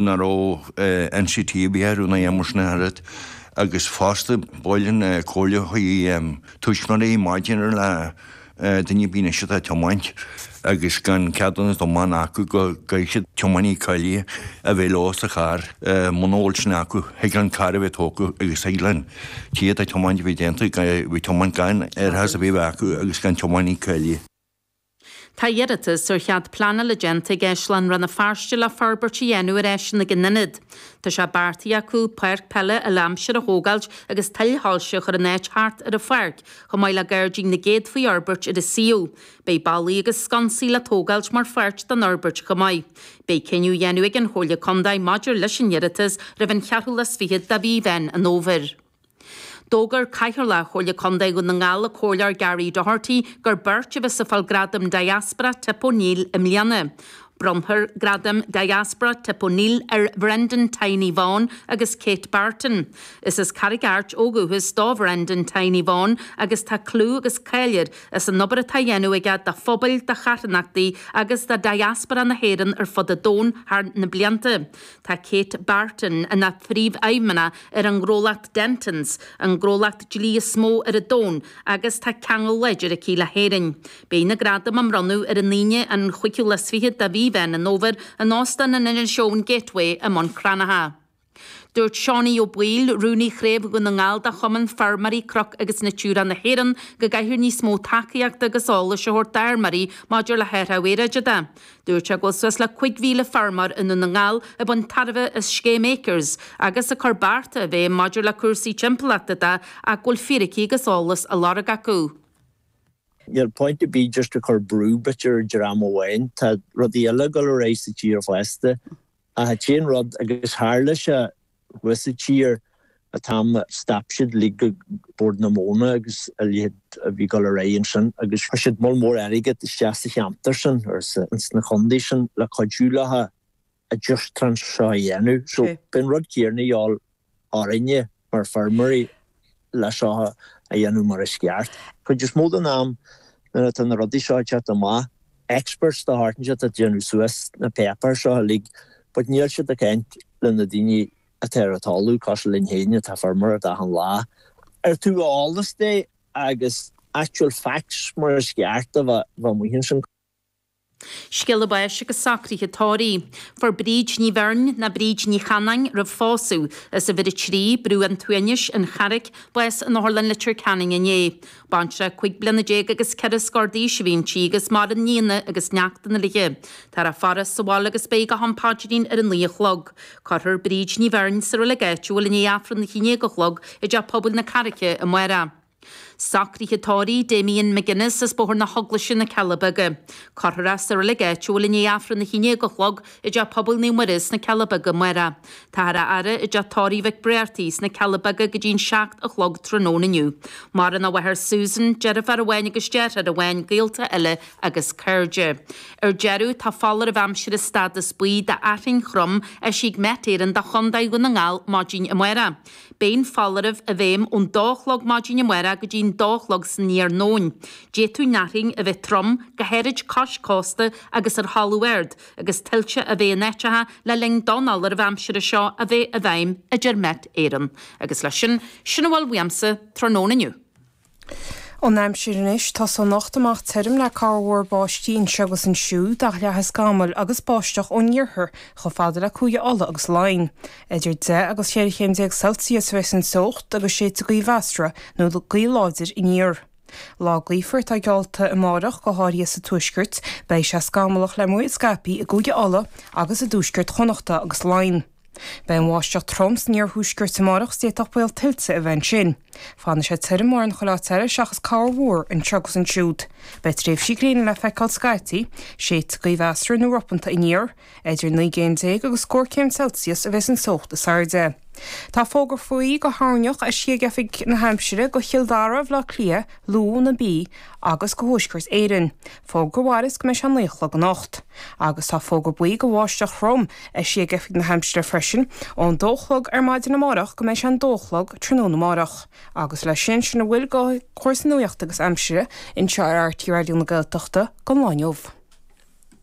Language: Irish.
nach raibh NCT ar bith ar an aidhm os na hArd agus fosta bhuel an chomhairle do thuismitheoirí maidir le daoine faoin aois atá ag tiomáint agus gan ceadúnas tiomána acu go gcaithfidh siad tiománaí cáilithe a bheith leo sa charr. Muna bhfuil sin acu thig leis an carr a bheith tógtha agus thig leis an té atá ag tiomáint a bheith déanta, a bheith ag tiomáint gan árachas ar bith a bheith acu agus gan tiománaí cáilithe. Tá iarratas ar chead pleanála déanta ag Áislann Rann na Feirste le forbairt a dhéanamh ar áiseanna ag an ionad. Tá sé beartaithe acu páirc peile uile-aimsir a thógáilt agus tuilsoilse a chur in áit thart ar an pháirc, chomh maith le gairdín na gcéadfaí a fhorbairt ar an suíomh. Beidh ballaí agus sconsaí le tógáilt mar pháirt den fhorbairt chomh maith. Beidh cinneadh á dhéanamh ag an Chomhairle Contae maidir leis an iarratas roimh an cheathrú lá is fichead de mhí Mheán an Fhómhair. D'fhógair Cathaoirleach Chomhairle Contae Dhún na nGall, an Comhairleoir Gary Doherty, gur beirt a bheas ag fáil Gradam Diaspora Tip O'Neill i mbliana. Bronnfar Gradam Diaspora Tip O'Neill ar Bhrendan Tiny Vaughan agus Kate Barton. Is as Carraig Airt ó dhúchas do Bhrendan Tiny Vaughan agus tá clú agus cáil air as an obair atá á dhéanamh aige do phobail, do charthanachtaí agus do Diaspora na hÉireann ar fud an domhain thar na blianta. Tá Kate Barton ina Phríomhfheidhmeannach ar an ngnólacht Dentons, an gnólacht dlí is mó ar an domhan, agus tá ceangal láidir aici le hÉirinn. Beidh na gradaim á mbronnadh ar an Aoine, an 25ú de mhí Mheán an Fhómhair, in Óstán an Inis Eoghain Gateway i mBun Cranncha. Dúirt Seánie Ó Baoill, Rúnaí Chraobh Dhún na nGall de Chumann Feirmeoirí Cnoc agus Natura na hÉireann, go gcaithfear níos mó tacaíochta agus eolais a thabhairt d'fheirmeoirí maidir le hathrú aeráide de. Dúirt sé go bhfuil suas le cúig mhíle feirmeoir i nDún na nGall ag baint tairbhe as scéim ACRES agus ag cur bearta i bhfeidhm maidir le cúrsaí timpeallachta de ach go bhfuil fíricí agus eolas á lorg acu. Níl point ar bith just ag cur brú b'fhéidir ar dream amháin. Tá rudaí eile ag dul ar aghaidh sa tír fosta. Ach an t-aon rud, agus tharla sé, Rithfid siar an t-am a stop siad like Bord na Móna agus a leithéid a bhí ag dul ar aghaidh ansin agus chuir siad moll mór airgead isteach sa cheantar sin agus ins na condaetha sin le cuidiú leofa an just transition a dhéanamh so beidh an rud céarna de dhíobháil orainne mar feirmeoirí leis seo a dhéanamh mar is ceart. Cuid is mó den am nuair atá na rudaí seo ag teacht amach, experts de shórt inteacht ag déanamh suas na páipéir seo uilig, but níl siad ag caint le na daoine atá ar an talamh, cosúil linn féin atá ag feirmeoireacht achan lá. Ar thaobh eolais de agus actual facts mar is ceart a bheith amuigh ansin? Scéala báis agus socruithe tórraimh. Fuair Bríd Ní Bheirn, nó Bríd Ní Chanainn roimh phósadh, as uimhir a trí, Brú an tSuaimhnis, An Charraic, bás in Otharlann Leitir Ceanainn inné. Baintreach cúig bliana déag agus ceithre scór d'aois a bhí inti agus maireann nianna agus neachtanna léithe. Táthar á faire sa bhaile agus beidh go ham an phaidrín ar an naoi a chlog. Cuirfear Bríd Ní Bheirn sa reilig áitiúil i ndiaidh Aifreann a haon déag a chlog i dTeach Pobail na Carraice amárach. Socruithe tórraimh, Damien McGuinness as Bóthar na hEaglaise, na Cealla Beaga. Cuirfear é sa reilig áitiúil i ndiaidh Aifreann a haon déag a chlog i dTeach Pobail Naomh Muire sna Cealla Beaga amárach. Táthar á fhaire i dTeach Tórraimh Mhic Bhriartaigh sna Cealla Beaga go dtí an seacht a chlog tráthnóna inniu. Maireann a mháthair Susan, deirfiúr amháin agus deartháir amháin gaolta eile agus cairde. Ar deireadh, tá foláireamh aimsire stádas buí d'fhearthainn throm eisithe ag Met Éireann do Chontae Dhún na nGall maidin amárach. Beidh an foláireamh i bhfeidhm ón dó a chlog maidin amárach go dtí'n dó a chlog san iarnóin. D'fhéadfadh an fhearthainn a bheith trom, go háirid cois cósta agus ar thalamh ard, agus tuillte a bheith in áiteacha le linn don fholáireamh aimsire seo a bheith i bhfeidhm, a deir Met Éireann. Agus leis sin, sin a bhfuil uaimse tráthnóna inniu. Ón aimsir anois tosóidh anocht amach tirim le corrmhúr báistí anseo agus ansiúd ach leathfaidh scamaill agus báisteach ón iarthar chomh fada le Cúige Uladh agus Laighin. Idir deich agus cheithre chéim déag Celsius a bheas an teocht agus séidfidh gaoth mheasartha nó gaoth láidir aniar. Lá gaofar atá geallta amárach, go háirithe sa tuaisceart. Beidh sé scamallach le múir scaipthe i gCúige Uladh agus i dtuaisceart Chonnacht agus Laighin. Beidh an bháisteach trom san iarthuaisceart amárach is d'fhéadfadh baol tuilte a bheith ansin. Fanfaidh sé tirim mórán chuile áit eile seachas corrmhúr anseo agus ansiúd. Beidh tréimhsí gréine le feiceáil scaití, séidfidh gaoth mheasartha nó ropanta aniar. Idir naoi gcéim déag agus scór céim Celsius a bheas an teocht is airde. Tá fógra buí go thoirneach eisithe ag Oifig na hAimsire go Chill Dara, Bhaile Átha Cliath, Lú, na Mí agus go Thuaisceart Éireann. Fógra mhaireas go mbeidh sé a naoi a chlog anocht. Agus tá fógra buí go bháisteach throm eisithe ag Oifig na hAimsire freisin, ón dó a chlog ar maidin amárach go mbeidh sé an dó a chlog tráthnóna amárach. Agus leis sin, sin a bhfuil go chúrsaí nuaíochta agus Aimsire anseo ar RTÉ Raidió na Gaeltachta don lá inniu.